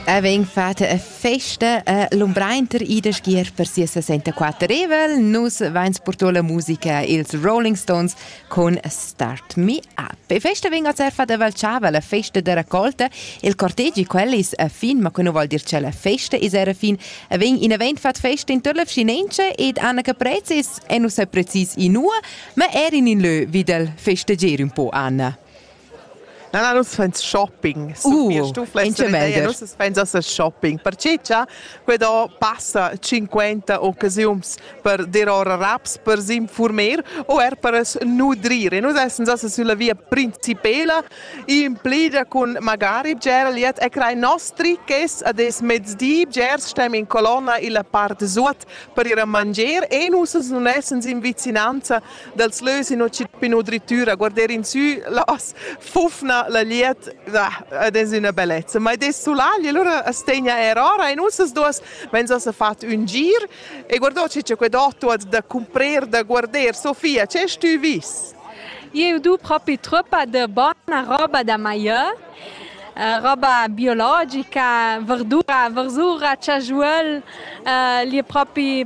Er vegn fatta a festa a l'umbreiter Ida Schier per sia 64 Revel. Nus vains purtò la musica ils Rolling Stones con Start Me Up. E festa vegn a cerfa da Valchava, la festa da raccolta. Il cortegi quel is a fin, ma que nu vol dir che la festa is era fin. E vegn in event fat festa in Törla Vschinenche ed Anna Caprez is e nus sa precis inua, ma er in in lö vi dal festeger un po, Anna. Na, na, nus fans shopping. Uh, in cemender. Nus fans a shopping. Perché cha quedò passa 50 occasiuns per dir ora raps, per s'informer o er per nudrir. E nus essens assa sulla via principela in plidia cun magari bger liet e crai nostri ch'es ad es mezdi bger stem in colonna illa part suot per ir a manger e nus nun essens in vicinanza dels lös in ino drittüra, guarder in sü las fufna la liet, ed es üna bellezza. Ma ed es sulagli, allura as tegna eir ora in ussas duos, ma ins as ha fat ün gir e guardò che c'è qued'otto da cumprer, da guarder. Sofia, che stü vis? Eu do propi truppa de bona roba da maior. Uh, roba biologica, verdura, versura, chajuol, uh, li è propi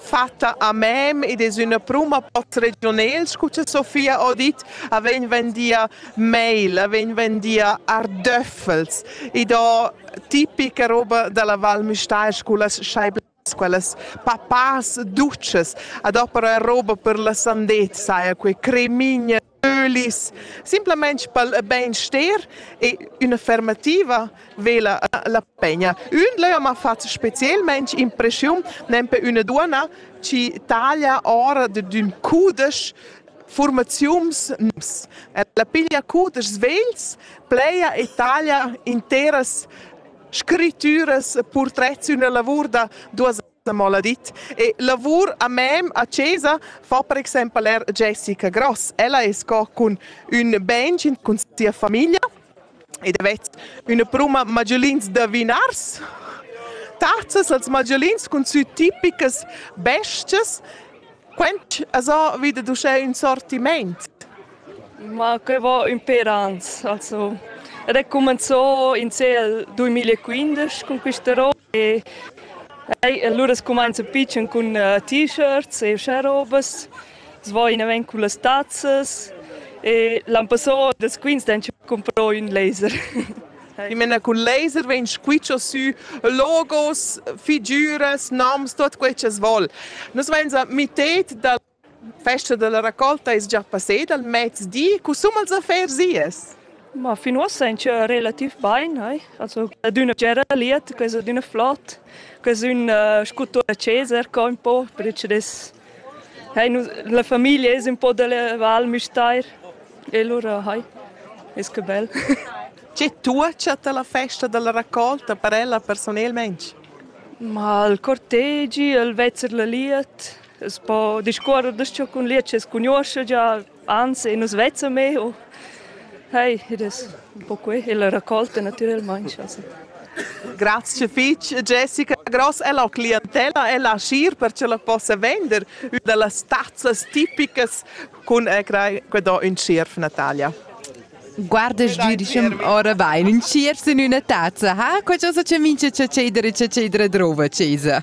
fatta a mem ed es üna pruma pot regionel, scu cha Sofia ho dit, a vegn vendia meil, a vegn vendia ardöffels. Id ho tipica roba da la Val Müstair scu las scheiblas quellas papas dutschas. A do però roba per la sandezza, eir que cremigna Ölis, simplamain pel bainster e ün'affermativa vela la pegna. Ün leu m'ha fatg specielmaing impreschiun nempe üna duonna chi taglia ora d'ün cudesch formaziuns nus. Ella piglia cudeschs vegls, pleja e taglia interas scrittüras, purtrets, üna lavur da duos la maladit. E lavur a mem a Cesa fa per exempel er Jessica Gross. Ella è sco cun un bengin cun sia famiglia ed avets una pruma magellins da vinars. Tarzas als magellins cun sü tipicas bestias. Quent asa vida d'uschè un sortiment? Ma que va ün per ans, also recumenzò in cel 2015 con questa roba E Hey, allura scumainza pitschen cun uh, t-shirts e uschè robas, svoina ven cun las tazzas e l'an passò das quins den comprò ün laser. I mena cun laser vegn squitscho sü logos, figüras, noms, tot quei che vol. Nus vains a mitet da Festa dalla raccolta es già passeda al mezdi. Cusum als affers ies? Ma fin uossa in tschö relativ bain, ai. Also d'üna tgera liet, que es d'üna flot, que es ün uh, sculptura Ceser co ün po, perche des hai nu, la famiglia es un po da la Val Müstair e lura hai, es que bel. Che tua chatta la festa dalla raccolta per ella personelmente? Ma il cortegi, il vezzer la liet, Es po discuorrer da ciò cun liet es cugnuoscha già, anzi nus vezza me o Hey, ed es un po qui e la raccolta natüralmaing. Also. Grazie fitch Jessica. Gross è la clientela, è la scier per ce la possa vender una delle tazzas tipicas con quando un scierf Natalia. Guarda, diciamo, ora vai in sciers in una tazza, ha? Qualcosa ci mince c'è cedere, c'è cedere drova, cesa.